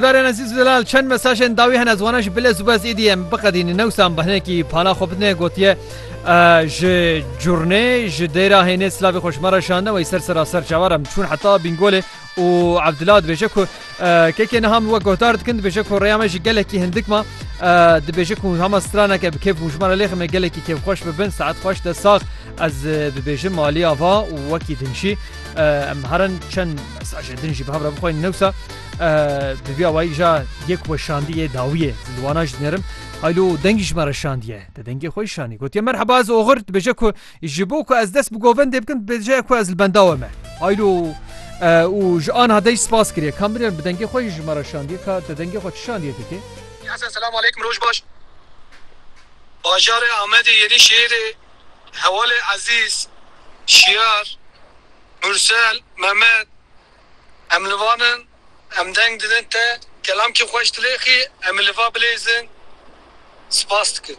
Berên Ezîz û Zelal çend mesajên dawî hene ez wana ji bilez û bez êdî em biqedînin. Newsa em bi hinekî pala xwe bidine gotiye ji Curnê ji Dêra Hênê silavê xwe ji me re şandine wey ser sera ser çavar em çûn heta Bîngolê û Ebdila dibêje ku kekê niha min we guhdar dikin dibêje ku rêya me jî gelekî hindik ma dibêje ku hema straneke bi kêf bû ji me re lêxin me gelekî kêfxweş bibin saet xweş de sax ez dibêjim aliya va û wekî din jî em herin çend mesajê din jî bi hev re bixweynin newsa Bi vî awayî ja yek weşandî yê dawî ye li wana ji nêrim Haylo dengî ji me re şandiye te dengê xwe şanî gotiye merheba ez oxir dibêje ku ji bo ku ez dest bi govendê bikin dibêje ku ez li benda we me Haylo û ji an hadej spas kiriye kam birêr bi dengê xwe ji me re şandiye ka te dengê xwe şandiye dikê Hesen selam aleykum roj baş Bajarê Amedê yenî şêrê Hewalê Ezîz Şiyar Mursel Memed Em li van in, em deng didin te, kelamkî xweş dilêxî, em ê li va bilêzin. Spas dikim.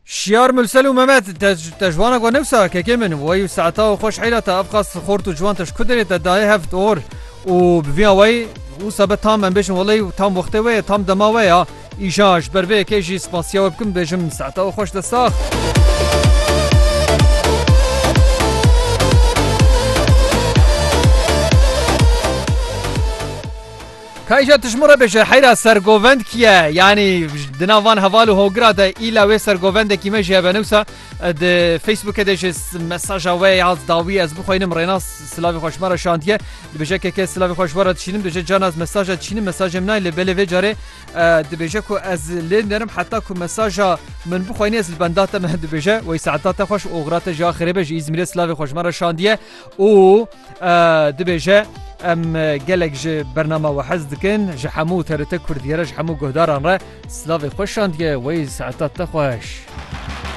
Şiyar Mursel û Memed, te te ji wan e ku ne wisa kekê min, wey û Seeta û xweş heyla te ev qas xort û ciwan te ji ku derê te daye hev ti or û bi vî awayî wisa be tam em bêjin welay tam wextê we ye tam dema we ya, Îşa ji ber vê yekê jî spasiya we bikim bêjim saeta we xweş destsax. Kayja tişmura beje heyra sergovend kiye yani dina van heval û hogira de îla wê sergovendekî me jê benewsa Di Facebookê de ji mesaja we ya dawî ez bixwînim rênas silavî xweş me re şandiye dibêje keke silavî xweş we re dişînim dibêje can ez mesaja dişînim mesajê min nayê lê belê vê carê dibêje ku ez lê nerim heta ku mesaja min bixwînî ez li benda te me dibêje wey saeta te xweş oxira te ji axirê be ji îzmîrê silavî xweş me re şandiye û dibêje em gelek ji bernama we hez dikin ji hemû terite Kurdiyere ji hemû guhdaran re silavê xweş şandiye wey saeta te xweş.